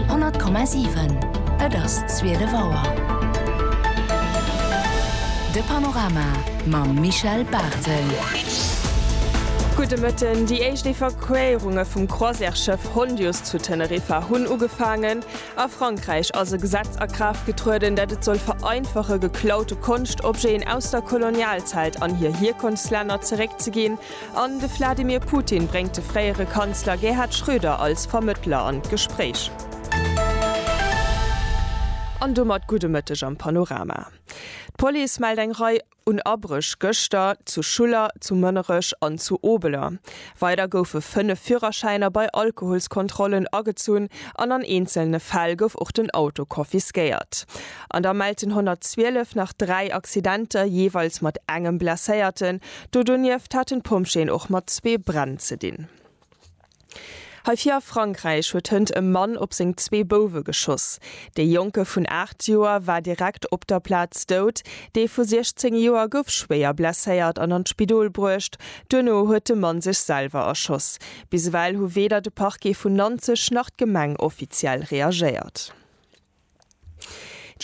100,7 Et ass zwielef Auer. De Panorama mam Michel Barthel. Gudde Mëtten. Déi éischt Evakuéierunge vum Croisièresschëff Hondius zu Teneriffa hunn ugefaangen. A Frankräich ass e Gesetz a Kraaft getrueden, dat et soll vereinfache geklaute Konschtobjeten aus der Kolonialzäit an hir Hierkonftslänner zeréckzeginn. An de Vladimir Putin bréngt de fréiere Kanzler Gerhard Schröder als Vermëttler an d'Gespréich. An domat gudde Mëtteg am Panorama. D'Police mellt eng Rei un Abréch gëschter zu Schuller, zu Mënnerech an zu Obeler. Weider goufe 5 Führerschäiner bei Alkoholskontrollen agezunn an an eenzelne Fäll gouf och den Auto confisquéiert. An da mellt den 112 nach 3 Accidenter, jeeweils mat engem Blesséierten. Do donieft haten d'Pompjeeën och mat zwee Bränn ze dinn. Hei vir a Frankräich huet hënt e Mann op seng zwee Bouwe geschoss. Dee Jonke vun 8 Joer war direkt op der Plaz dout. Dee vu 16 Joer gouf schwéier blesséiert an an d'Spidol bruecht. Duerno huet de Mann sech selwer erschoss. Bis ewell hu weder de Parquet vun Nanzeg nach d'Gemeng offiziell reagéiert.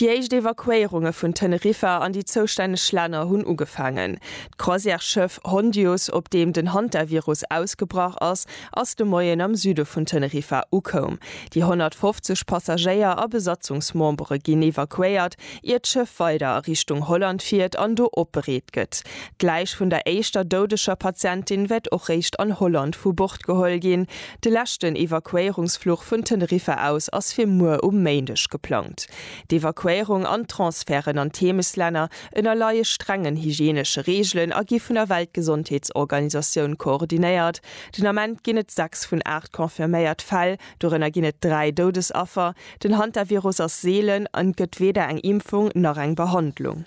Déi éischt Evakuéierunge vun Teneriffa an déi zoustänneg Länner hunn ugefaangen. D'Croisièresschëff Hondius, op deem den Hantavirus ausgebrach ass, ass de Moien am Süde vun Teneriffa ukoum. Déi 150 Passagéier a Besatzungsmembere ginn evakuéiert, ier d'Schëff weider a Richtung Holland fiert an do opbereet gëtt. D'Läich vun der éischter doudeger Patientin wäert och réischt an Holland vu Bord geholl ginn, De leschten Evakuéierungsfluch vun Teneriffa aus ass fir muer um Méindeg geplangt. D'Evakuéierung an d'Transferten an d'Heemeslänner ënnerleie strengen hygienesche Reegelen a gi vun der Weltgesondheetsorganisatioun koordinéiert. Den Ament ginn et 6 vun 8 confirméiert Fäll, dorënner ginn et 3 Doudesaffer. Den Hantavirus ass seelen an et gëtt weder eng Impfung nach eng Behandlung.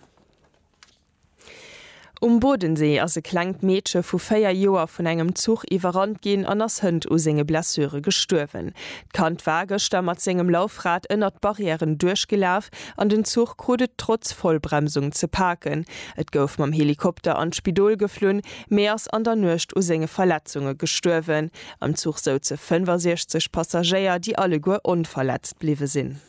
Um Bodensee ass e klengt Meedche vu 4 Joer vun engem Zuch iwwerrannt ginn an ass hënt u senge Blessure gestuerwen. D'Kand war gëschter mat sengem Laufrad ënnert d'Barrièren duerchgelaf an den Zuch krut et trotz Vollbremsung ze paken. Et gouf mam Helikopter an d'Spidol geflunn, mee ass an der Nuecht u senge Verletzunge gestuerwen. Am Zuch souze 65 Passagéier, déi alleguer onverletzt bliwwe sinn.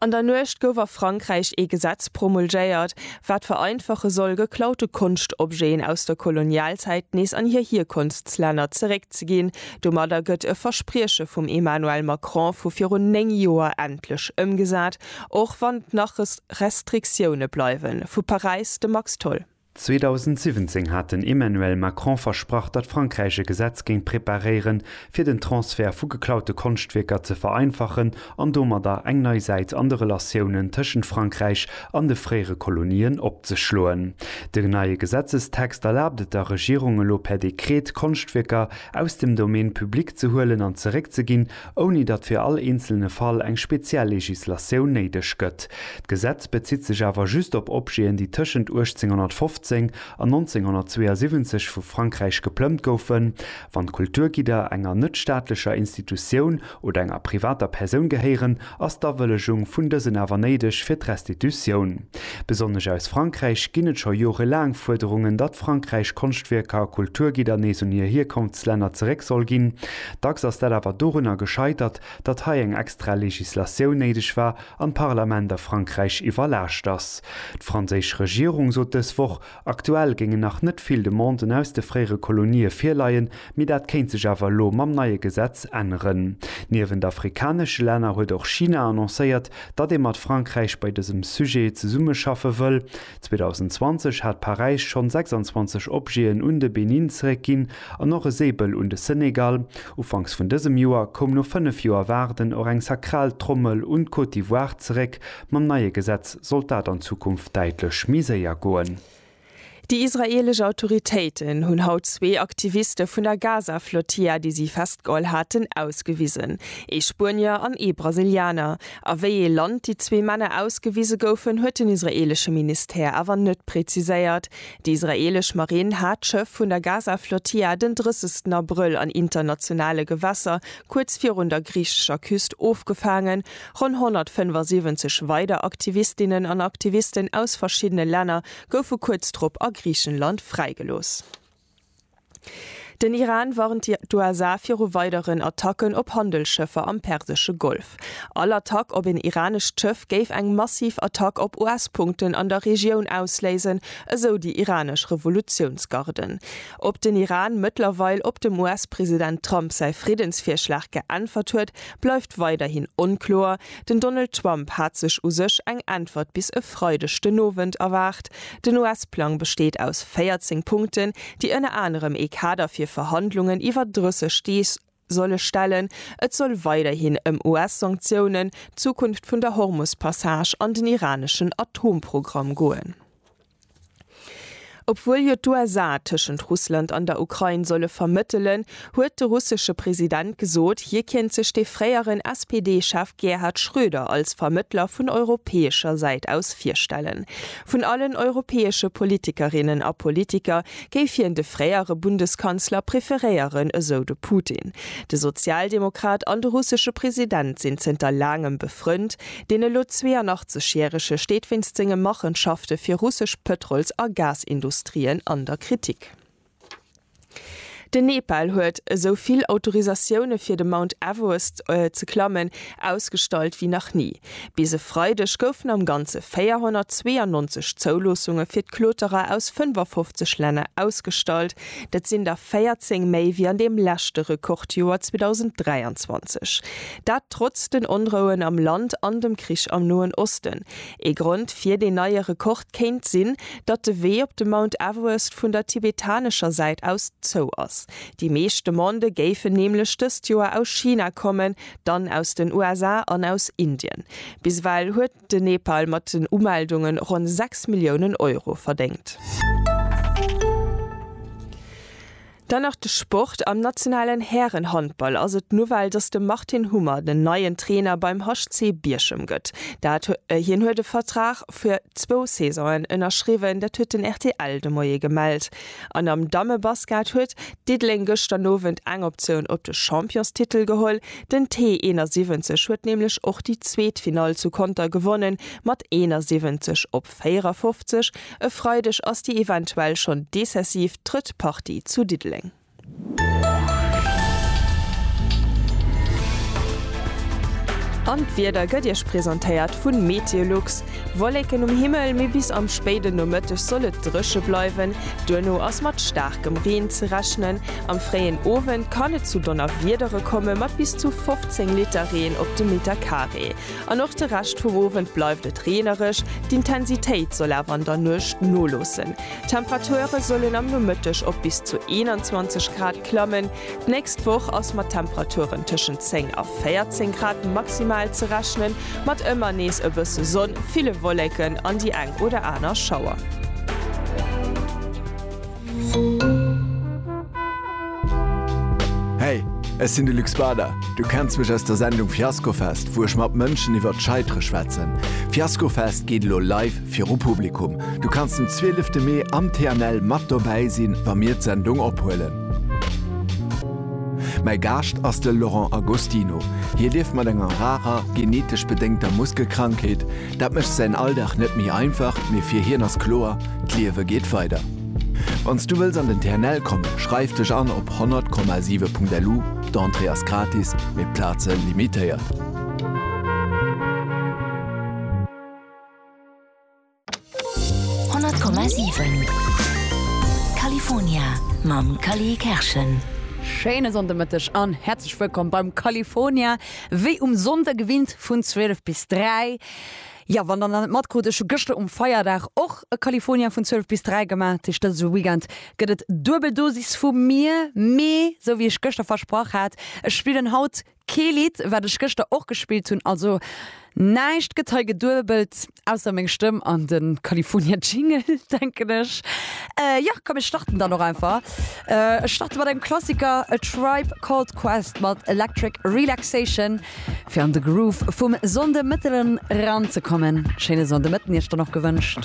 An der Nuecht gouf a Frankräich ee Gesetz promulgéiert, wat vereinfache soll, geklaute Konschtobjeten aus der Kolonialzäit nees an hir Hierkonftslänner zeréckzeginn. Domadder gëtt e Versprieche vum Emmanuel Macron vu virun 9 Joer endlech ëmgesat, och wann nach Restriktioune bleiwen. Vu Paräis de Max Tholl. 2017 hat den Emmanuel Macron versprach, datt Frankräich e Gesetz géing preparéieren, fir den Transfert vu geklaute Konschtwierker ze vereinfachen an domadder eng nei Säit an de Relatiounen tëschent Frankräich an de fréiere Kolonien opzeschloen. De neie Gesetzestext erlaabt et der Regierung elo per Dekret, Konschtwierker aus dem Domaine public ze huelen an zeréckzeginn, ouni datt fir all eenzelne Fall eng speziell Legislatioun néideg gëtt. D'Gesetz bezitt sech awer just op Objeten, déi tëschent 1815 an 1972 vu Frankräich geplëmmt goufen. Wann d'Kulturgidder enger net-staatlecher Institutioun oder enger privater Persoun gehéieren, Ass d'Awëllegung vun dësen awer néideg fir d'Restitutioun? Besonnesch aus Frankräich ginn et scho jorelaang Fuerderungen, datt Frankräich Konschtwierker a Kulturgidder nees un hir Hierkonftslänner zeréck soll ginn. Dacks ass dat awer dorunner gescheitert, datt hei eng extra Legislatioun néideg war an d'Parlament a Frankräich iwwerlaascht ass. D'franséisch Regierung sot dës Woch, Aktuell géingen nach net vill Demanden aus de fréiere Kolonië virleien, mee dat kéint sech awer elo mam neie Gesetz änneren. Niewent afrikanesche Länner huet och China annoncéiert, datt ee mat Frankräich bei dësem Sujet zesummeschaffe wëll. 2020 hat Paräis schonn 26 Objeten un de Benin zeréckginn an och e Säbel un de Senegal. Ufanks vun dësem Joer koum no fënnef Joer Waarden och eng sakral Trommel un d'Côte d'Ivoire zeréck. Mam neie Gesetz sollt dat an Zukunft däitlech méi séier goen. Déi israeelesch Autoritéiten hunn haut zwee Aktiviste vun der Gaza-Flotilla, déi si festgeholl haten, ausgewisen. Ee Spuenier an ee Brasilianer. A wéi ee Land déi zwee Männer ausgewise goufen, huet den israeelesche Ministère awer net preziséiert. Déi israeelesch Marinn hat d'Schëff vun der Gaza-Flotilla den 30 Abrëll an internationale Gewässer kuerz virun der griichescher Küst ofgefaangen Ronn 175 weider Aktivistinnen an Aktivisten aus verschiddene Länner goufe kuerz drop a Griichenland fräigelooss. Den Iran warnt d'USA viru weideren Attacken op Handelsschëffer am persesche Golf. All Attack op een iranescht Schëff géif eng massiv Attack op US-Punkten an der Regioun ausléisen, esou déi iranesch Revolutiounsgarden. Ob den Iran mëttlerweil op dem US-President Trump säi Friddensvirschlag geäntwert huet, bleift weiderhin onkloer. Den Donald Trump hat sech u sech eng Äntwert bis e Freideg den Owend erwaart. Den US-Plang besteet aus 14 Punkten, déi ënner anerem ee Kader fir Verhandlungen iwwer 30 Deeg solle stellen. Et soll weiderhin ëm US-Sanktiounen, d'Zukunft vun der Hormus-Passage an den iraneschen Atomprogramm goen. Obwuel jo d'USA tëschent Russland an der Ukrain solle vermëttelen, huet de russesche President gesot, hie kéint sech de fréieren SPD-Chef Gerhard Schröder als Vermëttler vun europäescher Säit aus virstellen. Vun allen europäesche Politikerinnen a Politiker géif hien de fréiere Bundeskanzler preferéieren, esou de Putin. De Sozialdemokrat an de russesche President sinn zënter laangem befrënnt, Deen elo 82 järege steet wéinst senge Machenschafte fir russesch Pëtrols a Gasindustrien an der Kritik. Den Nepal huet esou vill Autorisatioune fir de Mount Everest ze klammen ausgestallt wéi nach ni. Bis e Freideg goufen am Ganze 492 Zouloossunge fir d'Kloterer aus 55 Länner ausgestallt. Dat sinn der 14 méi wéi an deem leschte Rekordjoer 2023. Dat trotz den Onrouen am Land an dem Krich am Noen Osten. Ee Grond fir deen neie Rekord kéint sinn, datt de Wee op de Mount Everest vun der tibetanescher Säit aus zou ass. Déi meescht Demandë géifen nämlech dëst Joer aus China kommen, dann aus den USA an aus Indien. Bis ewell huet. den Nepal mat den Umeldunge ronn 6 Milliounen Euro verdéngt. Dann nach de Sport, Am nationalen Härenhandball ass et d'Nouvelle, datt de Martin Hummer den neien Trainer beim HC Bierchem gëtt. Dat Hien huet e Vertrag fir zwou Saisonen ënnerschriwwen, dat huet den rtl de Moie gemellt. An am Dammebasket huet Diddeleng gëschter Owend eng Optioun op de Championstitel geholl. Den T 71 huet nämlech och déi zweet Finall zu Conter gewonnen, mat 71 op 54. E Freideg ass déi eventuell schonn decessiv drëtt Partie zu Diddeleng. An d'Wieder gëtt Iech presentéiert vun Meteolux. Wolleken um Himmel, mee bis am spéiden Nomëtteg soll et dréche bleiwen. Duerno ass mat staarkem Reen ze rechnen. Am fréien Owend kann et zu Donnerwiedere komme mat bis zu 15 Liter Reen op de Meter Carré. An och de Rescht vum Owend bleift et reenereg, d'Intensitéit soll awer an der Nuecht noloossen. D'Temperature sollen am Nomëtteg op bis zu 21 Grad klammen. D'nächst Woch ass mat Temperaturen tëschent 10 a 14 Grad maximal ze rechnen, mat ëmmer nees e bësse Sonn, ville Wolleken an déi eng oder aner Schauer. Hey, ech sinn de Luc Spada. Du kenns mech aus der Sendung Fiaskofest, wou ech mat Mënschen iwwert d'Scheitere schwätzen. Fiaskofest geet elo live viru Publikum. Du kanns den 12 Mee am TNL mat dobäi sinn, wa mir d'Sendung ophuelen. Mäi Gaascht ass de Laurent Agostino. Hie lieft mat enger rarer, genetesch bedéngter Muskelkrankheet. Dat mécht säin Alldag net méi einfach, mee fir hien ass kloer, D'Liewe geet weider. Wann s du wëlls an den TNL kommen, schreif dech an op 100,7.lu, d'Entrée ass gratis, mee d'Plaze limitéiert. 100,7 California mam Cally Kerschen. Schéine Sonndemëtteg an häerzlech wëllkomm beim California. Wéi um Sonnde gewinnt vun 12 bis 3. Jo, wann der nach net matkrut, ech hu gëschter um Feierdag och e California vun 12 bis 3 gemaach. Dat heescht, dëse Weekend gëtt et Duebeldosis vu mir. Mee, sou wéi ech gëschter versprach hat, ech spillen haut Kee Lidd wat ech gëschter och gespillt hunn, also näischt gëtt hei geduebelt, ausser meng Stëmm an de California Jingle denken ech. Jo komm ech starten dann och einfach. Ech starte mat engem Klassiker, A Tribe Called Quest mat Electric Relaxation fir an de Groove vum Sonnde Mëtten eran ze kommen. Schéine Sonnde Mëtten iech dann och gewënscht.